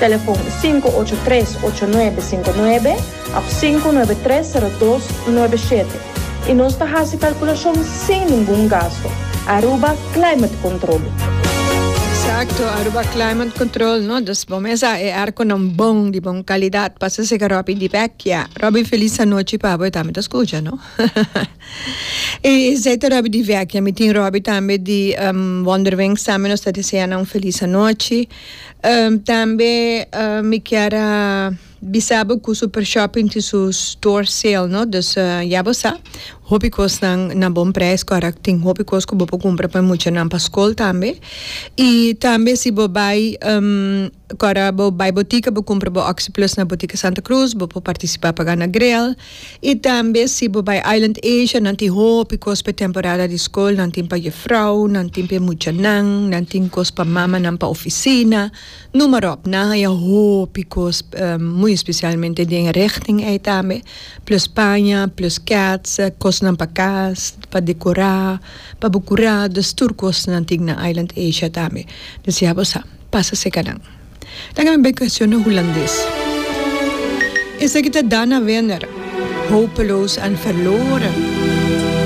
Telefon sinku ocho tres ocho nuebe sinku nuebe òf sinku nuebe tres sero dos nuebe shete i nos ta hasi kalkulashon sin ningun gasto. Aruba Climate Control. Exacto, Aruba Climate Control no dus bo mesa e airconan bon di bon calidad pasa seca Robby di vecchia. Robby feliz anochi pabo e tambe ta scucha no. E esei ta Robbie di Vecchia. Mi tin Robbie tambe di Wonderwings tambe. Nos ta desea nan un felis anochi. Tambe mi kier a bisa bo cu Super Shopping tin su store sale no. Dus ya bo sa. Hopi cosnan na bon prijs cu ara tin hopi cos cu bo por cumpra pa e muchanan pa scol tambe. Y tambe si bo bay Kòrda bo bai botika bo kumpra bo Oxyplus na Botika Santa Cruz bo por partisipá pa gana grel i tambe si bo bai Island Asia nan tin hopi kos pa e temporada di skol nan tin pa jefrou nan tin pa e muchanan nan tin kos pa mamanan pa ofisina numeròp nan haña hopi kos muy especialmente den e richting ei tambe plus paña plus kèts kosnan pa kas pa dekorá pa bo kurá dus tur kos nan tin na Island Asia tambe desiá bo sa. pasa seka nan. Laga mi bai kuestiona Hulandes. Esaki ta Dana Wenner, hopeloos en verloren.